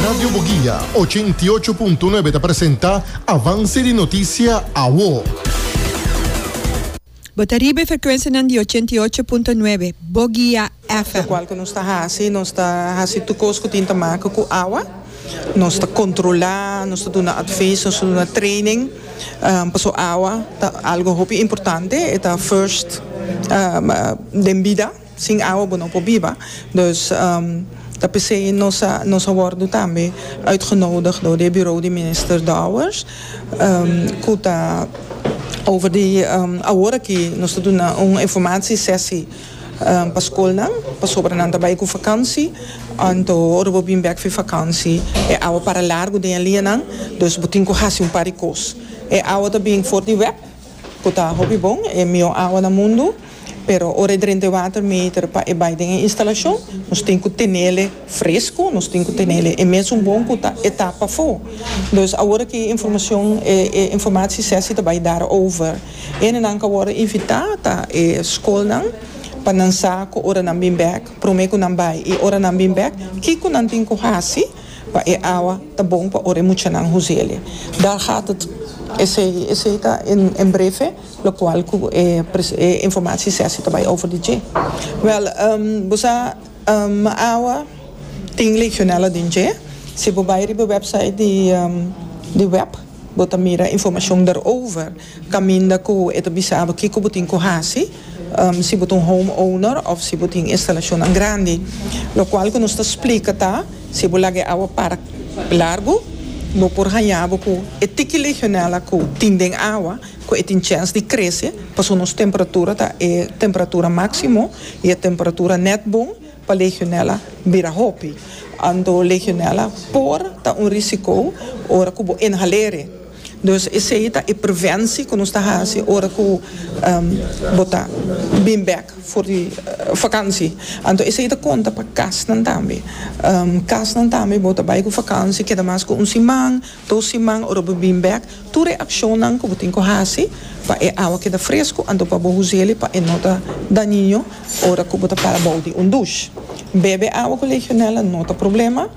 Radio Boguia, ochenta i ocho punto nuebe ta presenta Avance di Noticia Awo. Bo ta riba e frekuensianan di ochenta i ocho punto nuebe Boguia FM. Cual cu nos ta haci, nos ta haci tur cos cu tin ta make cu awa. Nos ta controla, nos ta duna advies, nos ta duna training. Pasobra awa ta algo hopi importante, e ta first den bida. Sin awa bo no por biba, dus ta p'esei nos a nos a wòrdu tambe uitgenoodig dor di e Bureau di Minister Dowers ku ta over di awor aki nos ta duna un informatie sesi pa skolnan pasobra nan ta bai ku vakansi anto ora bo bin bek fi vakansi e awa para largu den e lianan, dus bo tin ku hasi un par di kos. E awa ta bin for di wèp. Cu ta hopi bon, e mihó awa na mundu, pero ora e drenta e water meter pa e bai den e instalacion, nos tin cu tenele frescu, nos tin cu tenele e mesun bon cu ta e ta pafó. Dus awor aki e informacion, e e informatie sesi ta bai dar over. Ene nan cu worde invita ta e scolnan pa nan sa cu ora nan bin bek, prome cu nan bai y ora nan bin bek kico nan tin cu haci, Pa e awa ta bon pa ora e muchanan huzelia dar hatet. Esey esey ta en en breve locual cu e pres e informatie sesi ta bay over di dje. Wel ehm bo sa ehm awa tin legionella den dje si bo bay riba website di ehm di web bo ta mira informacion der over. Caminda cu e ta bisabo kico bo tin cu haci si bo ta un home owner of si bo tin instalacionnan grandi. Locual cu nos ta splica ta, si bo laga e awa para largu, bo por hañabo cu e tiki legionella cu tin den awa cu e tin chens di crece pasobra nos temperatura ta e temperatura maximo y e temperatura net bon pa legionella bira hopi. Anto legionella por ta un risico ora cu bo inhal'e. Dus esei ta e preventie cu nos ta haci ora cu bo ta bin bek for di vakantie. Anto esei ta conta pa casnan tambe. Casnan tambe bo ta bay cu vakantie keda mas cu un siman, dos siman ora bo bin bek tur e accionnan cu bo tin cu haci pa e awa keda frescu anto pa bo us'el'i pa e no ta dañino ora cu bo ta para bou di un douche. Bebe awa cu legionella no ta problema.